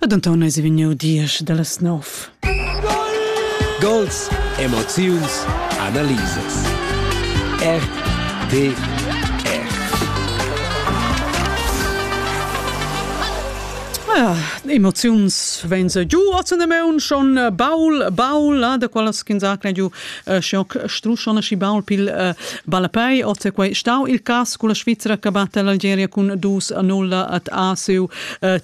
Ed Anton es vegniu diesch dallas nov. Gols, emoziuns, analisas. RTR. Ah, emoziuns vegn se giu a zun maun schon baul baul da qualas ch'ins ha giu struschona schi baul pil ballapei. Oz quei stau il cas con la Svizra che batte l'Algeria cun 2-0 at ASU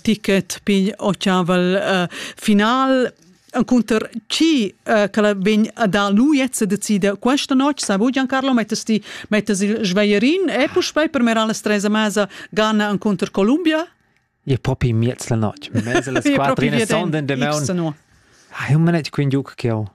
ticket pigl ochaval final Encounter chi uh, che vegn a dar lu jetzt decida questa notte, sabu Giancarlo mettes ti mettes il Schweierin e puspei per mer alla stresa mesa Ghana Encounter Columbia? Je propi miez la notte. Mese le squadrine sonden de maun. Ah, un minut quindi giuc che ho.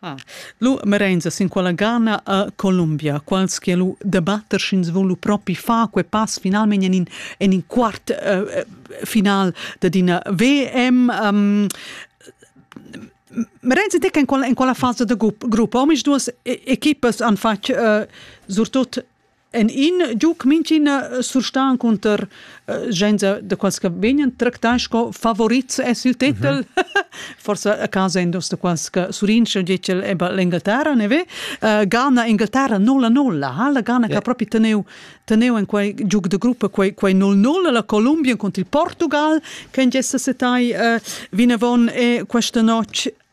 Ah. Lu Merenza sin quella gana a Columbia, quals che lu debatter sch'ins vul lu propi far quei pass finalmein en in, en in quart uh, final dad ina VM. Um, Merenzi dec en quella, en quella fasa da grupp, omis duas equipas han fatg uh, surtut En in giug mintgina surstan eh, cunter gens de quals che vegnan tractai sco favorits es il tetel. Mm -hmm. Forse a casa endos de quals che surince decel eba l'Inghilterra ne ve. Uh, Ghana Inghilterra 0-0 ha la Ghana yeah. che proprio teneu teneu en quei giug de gruppa quei quei 0-0 la Colombia contro il Portugal che gessa setai uh, vinavon e questa notte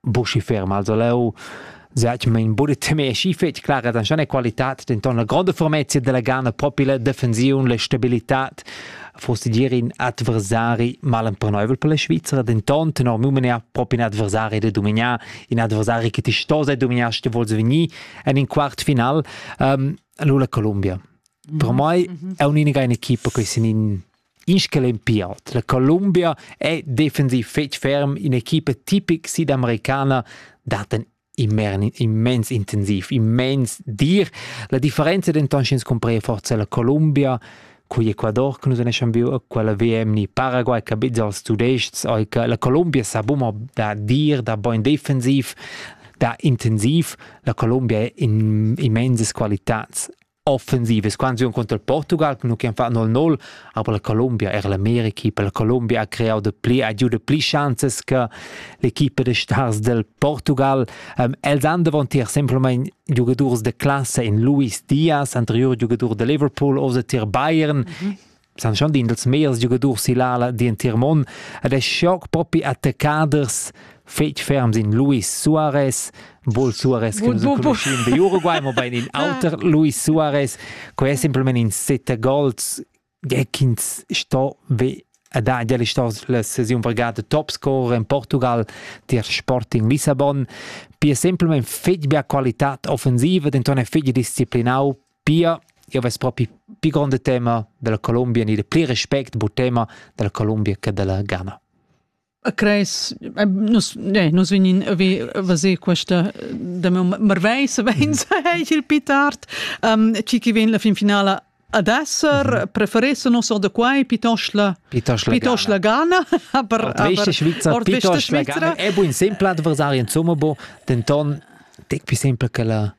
Buschifer Malsoleu. Zatg mein budi tema e schi fetg clara tan schon qualitad denton la gronda fermezia della Ghana propi la defensiun la stabilitad fosse dir in adversari malemperneubel per la Svizzera denton tenor Mumenia propi un adversari da dominar in adversari che ti stosa dominar sti volse venir en in quart final um, lula Columbia per mm -hmm. mai è un'unica in equipa che sin in Inschell'empial dalla Columbia è defensiv fetg ferm in'equipa tipic sidamericana dat en immens intensiv, immens dir. La differenza denton sch'ins cumprea forza la Columbia cugl Ecuador che nus eschan viu a quella VM ni Paraguay che biz als tudestgs ei che la Columbia sa buma da dir, da bein defensiv, da intensiv. La Columbia ha immensas qualitads offensivas quants un contra Portugal nu che fa 0-0 aber la Colombia er l'America per la Colombia ha creau de pli agiuda pli chances che l'equipa de stars del Portugal um, els han davantier semplamain giugadurs de classe in Luis Diaz anterior giugadur de Liverpool oder tier Bayern mm -hmm. san schon din dels meiers giugadurs silala d'entir mon ed es schoc propi attaccaders fetg ferms in Luis Suarez, Bol Suarez che nus conoscem de Uruguay, ma bein in auter Luis Suarez, quei è simpelmente in sette gols che ins sto ve ed ha già la sesione vergata top scorer in Portugal der Sporting Lissabon. Pia semplicemente fetg bia qualità offensiva, denton è fetg disciplinau Pia, io vess propi pi gronda tema della Columbia, ni de pli respect bu tema della Columbia che della Ghana. Crees, eh, nus, ne, nus vegnin vi vaser questa da marvei se vein se il pitart um, chi chi ven la fin finala ad esser mhm. preferesse non so da quai pietosch la pietosch la Ghana aber aber ordveste Schweizer è buin sempre adversario insomma bo denton tec più sempre che la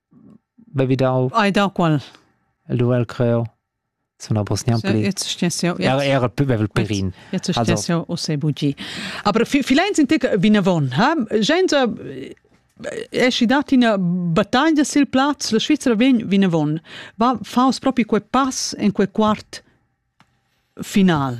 Be vi dau... Ai dau qual? El duel creo. Suna bos niam pli. Jetzt stess jau. Era era più bevel perin. Jetzt stess jau o se bugi. Aber vielleicht sind ich vinavon, ha? Genza esci dati una battaglia sil plaz, la Svizzera vegn vinavon. Va faus propi quei pass en quei quart final.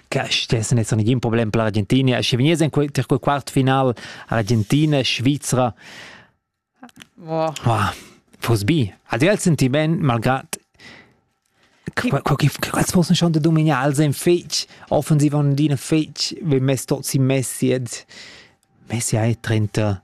stess net nigin problem per l'Argentina sche venies en quei ter quei quart final Argentina Svizra wow. wow. fos bi adel senti ben malgrad quals fossen schon de dominar als en fetg offensiv an dina fetg we mess tot si messi ed Messi hai 30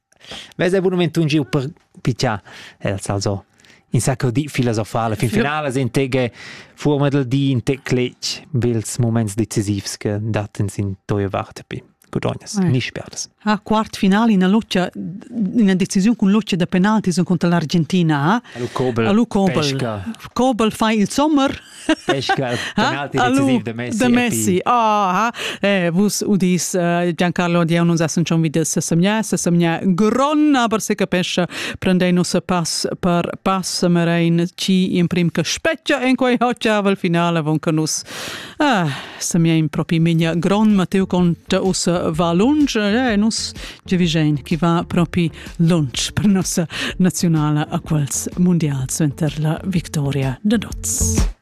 Vesa ei bunamein giu per piccià, els also in sacco di filosofala fin finala sin tege fuorma dal di in te cletg bels moments decisivs che datten sin toia vart pi gudognas ni sperdas. Ha quart finale in loccia una decisione con loccia da penalti son contro l'Argentina ha. Lu Kobel. Lu Kobel. Kobel fa il sommer Pesca penalti decisiv de Messi. De Messi. Ah, eh, vus udis uh, Giancarlo Dion uns essen schon wieder se semia, se semia gron, aber se capescha prendei nos pass per pass merein ci in prim che speccia en quei hoccia val finale von che nus ah, semia in propi migna gron Matteo conta us va lunch, eh, nus ci vigein chi va propi lunch per nossa nazionale a quels mondial center la victoria de Dotz.